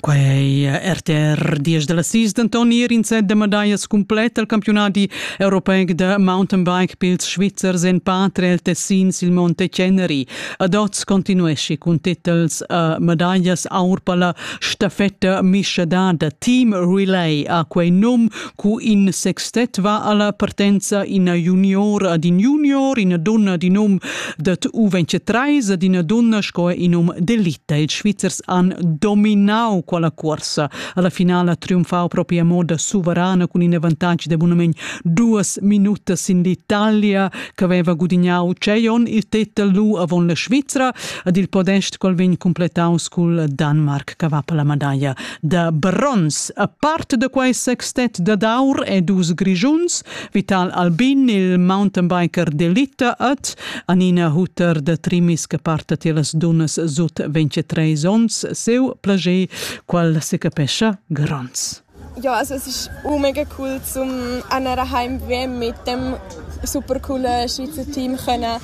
Quei RTR 10 dalla sis denton ir in set de medallas cumplet al campiunadi europeic de mountainbike pils Svizzers en patria el Tessin sil Monte Ceneri. Ad oz continuesci cun titels a medaglias aur per la stafetta mischadada Team Relay ha quei num Cu in sextet va alla partenza ina junior ad in junior, ina donna d'in um dat uvenche treis ad ina donna sco in um d'elita. Ils Svizzers han dominau quella corsa. Alla finala triumfau proprio a moda suverana cun in avantatg de bunament duas minutas in l'Italia che aveva gudignau Cejon il tetel lu avon la Svizzera ad il podest qual vegn completaus cul Danmark che va per la medaglia. da bronz. A part da quai sextet dad aur e dus grischuns, Vital Albin, il mountainbiker d'elite et Anina Hutter da Trimis che parta ti las dunas sut 23 onns, seu plager, qual se capescha gronds. Ja, also es ist mega cool zum an daheim mit dem super cool Schweizer Team können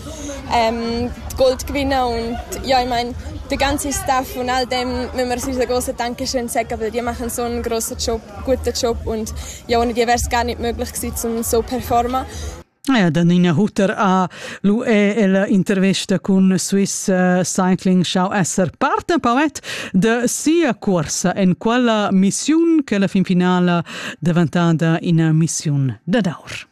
ähm, die Gold gewinnen und ja, ich meine, der ganze Staff und all dem müssen wir unser grosses Dankeschön sagen, weil die machen so einen grossen Job, guten Job und ja, ohne die wäre es gar nicht möglich gewesen, um so performen. Ja, dann in Hutter a lu è el intervesta cun Swiss eh, Cycling schau esser parte poet de sia corsa en quella missiun che la fin finala daventata in missiun da daur.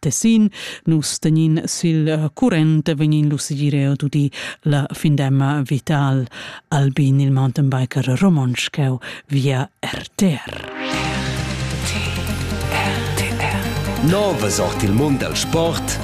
Tessin. Nus tegnin sil eh, current e vegnin lu segir tudi la findemma vital albin il mountainbiker romontsch cheu via RTR. Nova sort il mund al sport